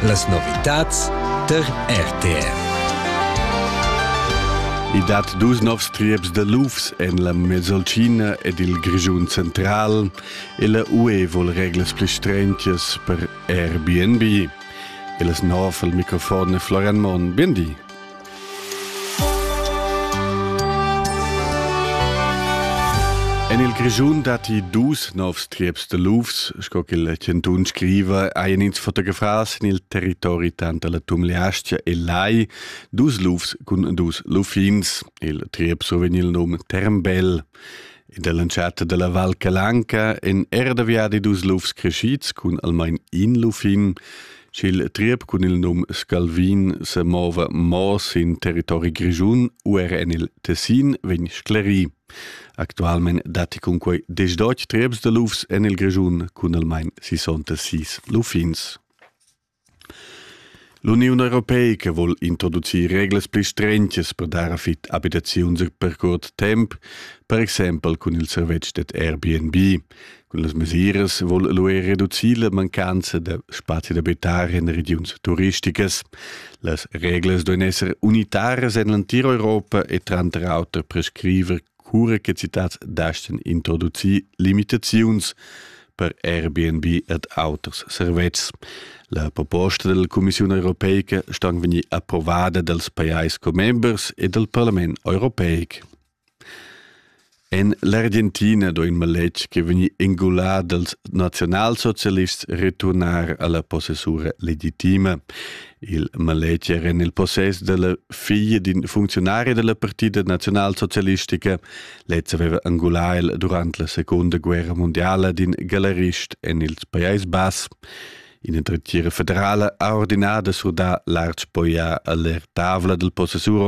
Las novitads tar RTR. I dat dus novs trieps da lufs en la Mesolcina ed il Grischun central e la UE vul reglas pli strengias per Airbnb. E las nov al microfon è Florian Monn. Bien di. En il Grischun datti dus novs trieps de lufs, sco che il chantun scriva, hajan ins fotografà sin il territori tanter la Tumleastia e Lai dus lufs cun dus luffins. Il triep survegn il num Termbell. In dell'entschatta della Val Calanca en era da viadi dus lufs crescids cun almain in luffin. Ch'il triep cun il num Scalvin semova mo sin territori grischun u era en il Tessin vegn sclerì. Actualmein datti cunquei desdotg trieps da lufs en il Grischun cun almain 66 luffins. L'Uniun Europeica vuol introducir reglas pli strenches per dar a fit abitaziuns per curt temp, per exempel cun il servetsch ded Airbnb. Quellas mesiras vul lu er reducir la mancanza da spazi d'abitar en regiuns turisticas. Las reglas duen esser unitaras en l'antir Europa e tranter auter prescriver cura che citats dasten introducir limitaziuns per Airbnb ed auters servetschs. La proposta della Commissione europeica sta vegnir approvada dals pajais commembers e dal Parlament europeic. En l'Argentina sto in maletg ch'è vegnì engulà dals naziunalsocialists returnar a la possessura legitima. Il maletg era en il possess della figlia d'in funzionari della partida naziunalsocialistica. Lez aveva angulà el durant la seconda guerra mondiala d'in galerist en il Pajais Bass. Ina dretgira federala ha ordinà da surdar l'arch poià a l'aertavla del possessur